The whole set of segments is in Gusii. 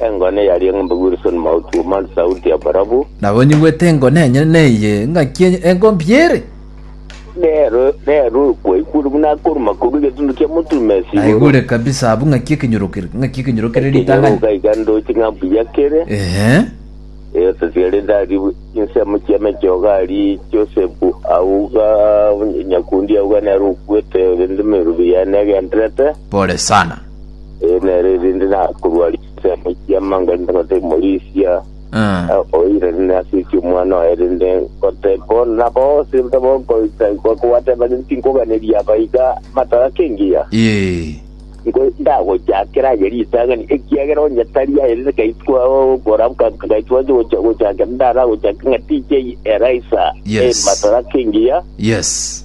Engone eyaria eng'umbe Wilson Mauti Omari Sauti ya Barabu. Nabonyigwete engone enyene neye, ngaki enye- engombi ere. Rero rero kwaigure buna akoruma korwa egetundu kia moturuma ase igoro. Naigure kabisa abwo ng'aki ekenyoro kere, ng'aki ekenyoro kere ritang'ani. Ekenyoroka iga ndoche ng'a mbuya kere. Ehe. Eyotasigare ndari insemo chia mechoga ari Josefu auga nyakundi auga nero okuete rende merubi yane agenderete. Pole sana. Eh, nere erinde nakorwa risa moikia mango erinde ngote morisia Ah. oire rinde asiki omwana oye rinde ngote bono na bose ntabo nkoita nkokowateba rinde tinkoganeria abaiga matara kengiya Ee. nko ndagochakera aye ritangani ekiagera onye tari aye rinde kaitwa okora kaitwa gocha gochakera ndara gochaka ng'a TJ Eraisa Yes. eh, matara kengiya Yes.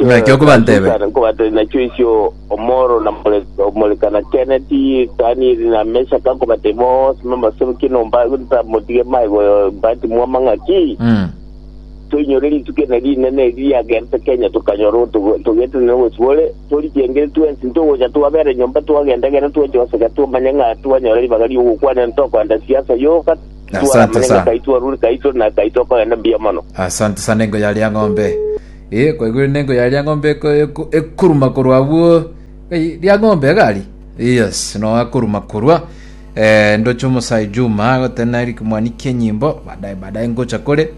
Naki okobanteebe. Nachusa nkobatebi nachio isio omoro na more omoreka na Kenneth, Daniel na Meshach nkobatebi bonsi b'amasoro ki enomba ntamotige maego mbatimwe amang'aki. Mm. Toinyore rituko ene rinene eri riagerete Kenya tokanyora otogo- togetire na obosibore, torichengire twensi ntogocha twabera nyomba twagenda gera twache goseka twamanya ng'a twanyora ribaga ri'ogokwana ntokogenda siasa yoka Asante Twara muna sana. ng'akai twarure kai tore na kai tokogenda mbuya mono. asante sana engo yaria ng'ombe Eh, kwaigure nengo yaria ng'ombe eko- eko- ekuruma korwa abwo Ei, ria ng'ombe egari yes no akuruma korwa eh, ndoche omosayi juma agotena eri kimwani kienyimbo baadaye baadaye ngocha kore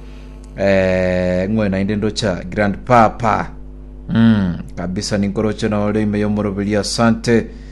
eh, ng'we naende ndocha grand papa mm, kabisa ninkoroche nore ime yomoroberia asante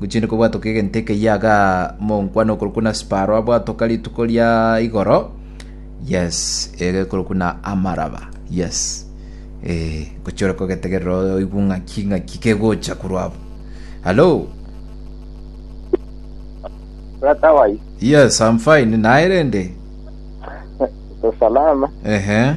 Gochia riko bwatoka egento ekeyia iga monkwa nokorokwa na Sparoa bwatoka rituko ria igoro, yes, egekorokwa na Amaraba, yes. Eh, gochia ore kogetegerera oigwe ng'aki ng'aki kegocha korwa abo. Hello? Brother wai, Yes, I'm fine. Naye rende? uko salama? Ehe.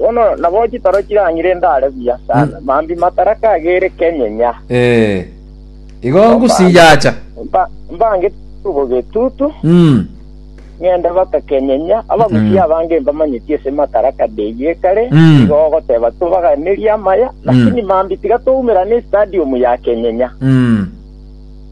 Bono nabo chitoro chirang'ire ndare buya sana, mambia mataraka agere kenyenya. Ee, igo ngosinyacha. Mba- Mbange tubo getutu, Mm. ng'ende baka kenyenya, abagusia abange mbamanyeti ase mataraka ndeyio ekare, Mm. igo ogoteba tobaganerie amaya, lakini mambia tiga toumerane estadium ya kenyenya. Mm.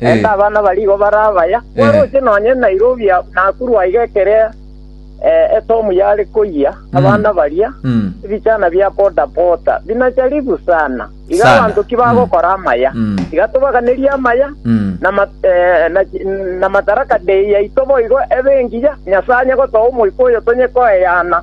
Naende abana barigo bare abaya, kwaroche nonya Nairobi aa, Nakuru aiga ekere eh, etomu yare koyia, abana baria, ebichana bia boda boda, binacharibu sana. Iga Sana. abanto ki bagokora amaya? Mm. Iga tobaganerie amaya, Mm. na ma- eh, na chi- na mataraka dei yaito boigo ebe engiya, Nyasae onye gotoa omoika oyo tonye koeyana.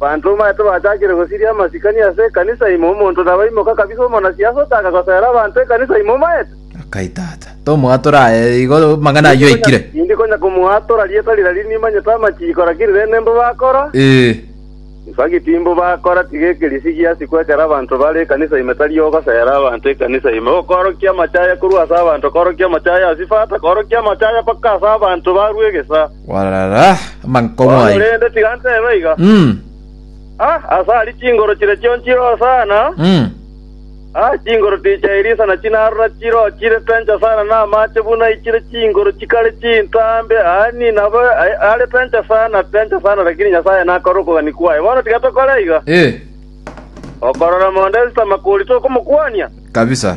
Abanto omanyete bachakire gosiria amasikani ase ekanisa ime, omonto nabaimoke kabisa omonasiasa otaaka gosoera abanto ekanisa ime, omanyete. Akai tata, tomwatora aye igo amang'ana ayio aikire. Tindi konya komwatora rieta riria riria nimanyete amachiiko, lakini rende nimbo bakora. Ee. Nsagi timbo bakora, tiga ekerisi giasikwe ekero abanto bare ekanisa ime tari ogosoera abanto ekanisa ime, okoorokia amache aya korwa ase abanto, koorokia amache aya ase ifata, koorokia amache aya mpaka ase abanto barue egesaa. Warara amankong'u aye. Korende tiga ntebe iga, Mm, ah, ase aria chinguru chire chionsi chire hosana, mm. ah, chinguru tichia Elisa na chinarora chiro chire pencha sana na amache buna ichire chinguru chikare chintambe, yaani nabo a- are pencha sana, pencha sana, lakini Nyasaye nakore okogania kwaye. Bono tiga tokore iga, Eh, okorora mondo esitama kori tokomokwania. kabisa.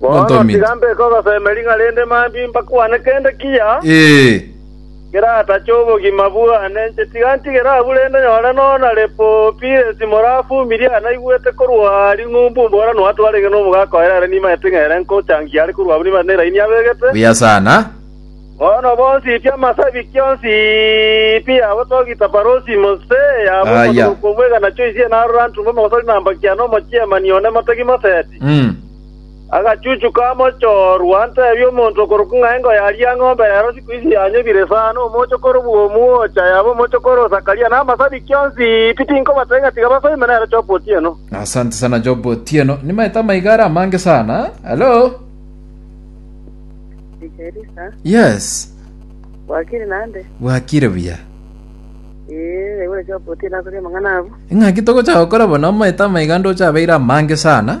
Bono Ontomete. tiga mbeke ogoseme ring'a rende mambia mbakwane kende kiya Ee. keratache obogima bwane. Inche tiga ntigere abwo rende nyore nonya Lepopiresi morafumirie aya naigwete korwa ring'umbu mbora noato arenge nomogaka oye ere nimaete ng'a ere nkochangia are korwa abwo nimaete neraini abegete. Buya sana. Bono bonsi pi amasabiki onsi pi yabo togita parosi mose yabo Aya. omotuko kwomwegana choisie narora ntumbe omogosori namba kiana omochiemani one motegi moseti. Mm. Agachuchu kamochorwa ntebie omonto okorokwa ng'a engo yaria eng'ombe ya Rosiku ise yanyobire sana, omochokoro oborua omwocha, yaba omochokoro o Zakaria, na amasabikia onsi pi tinkobatebia ng'a tiga basoime nere Job Otieno. Asante sana Job Otieno. Nimaete amaiga are amange sana. Hello. Erisa, Yes. wakiri nande? Bwakire buya. Ee, ore Job Otieno akoria amang'ana abu. Ing'aki togocha gokora bono amaete amaiga ndoche abeire amange sana.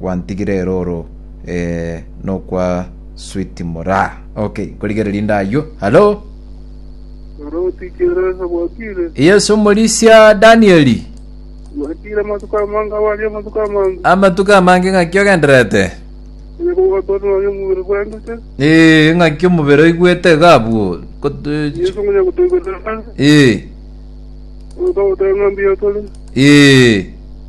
gwantigire eroro eh, nokwa sweet muraa. Okay, nkorigereria inde aywo. Halo? Oro otikeresa gwakire. Yesu omorisia Danieli. Gwakire amatuko amange abari amatuko amange. Amatuko amange ng'aki ogenderete? Onye kogotona onye omubiri bwendete. Eh, ng'aki omobere oigwete iga abwo. Kot- eh, ch- Yesu ngonya gotoiberera. Eh, Oka gotanga mbiya tore. eh.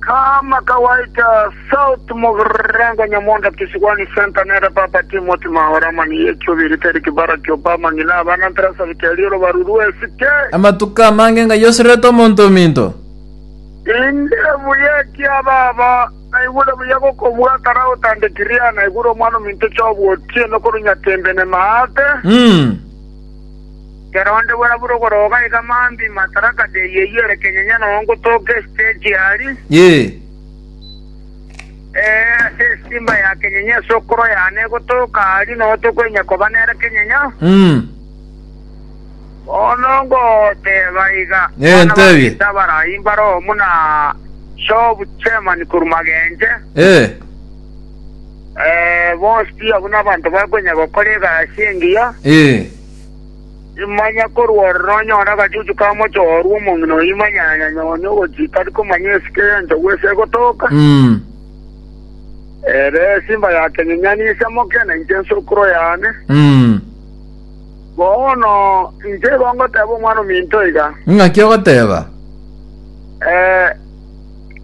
Kama kawaita, South Mogrenga Nyamonda Kisigwani Center nere Papa Timothy Maora Mani Yechobiri Teri Kibara Kiopama Ng'ina Abana Ntera Sabiti Arioro Baruru Esike Amatuko amange ng'ai oserete omonto ominto? Inde buya ekia baba naigure buya gokobua kare agotandekirie naigure omwana ominto chobua otiene korwa nyatembe ne maate. Mm. Kera onde bw'arabure ogoroga iga mambia Madaraka Day eyio ere kenyenyo nao ngotoka esitegi aria, Ee. ee, ase esimba ya kenyenyo esokoro yane egotoka aria, nao tokoenya koba nere kenyenyo. Mm. Bono ngoteeba iga, Ee, abana ba ntebie. Peter abaraai mbare omu na Job Chairman korwa Magenche, Ee. Eh, bonsi pi abwo nabanto bakonya gokora egasi engiya. Ee. Imanya korwa ororo onyore agachuchu ka mochorwa omong'ina oyo imanyanyanya one ogochika tari komanya esike y'enchogu ase egotoka. Mm. Ere esimba ya kenyenyani ise moke na inche nsokoro yane. Mm. Bono inche igo ngoteba omwana ominto iga. Ing'aki ogoteba? Eh,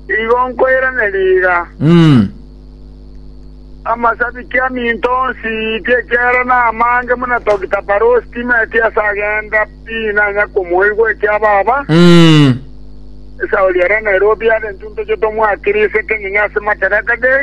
Igo nkoirane riga, amasabiki aminto onsi ti ekiagera namange buna Dokita Parousi timeti ase agenda pi nanya komoigwa ekia baba, esauri eria Nairobi are ntuntoche tomwakire ise kenyinyi ase Madaraka Day.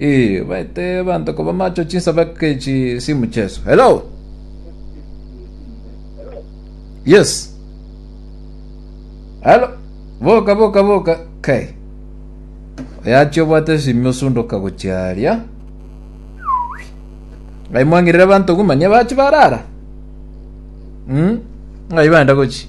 Ii, baete abanto koba macho chinsabake echi simu Jesu. Hello. Yes. Hello. Boka boka boka. Kai. Oyachi obwate simi osundoka gochiaria. Ngai mwangirira abanto gumanye bachi barara. Mm. Ngai baenda gochi.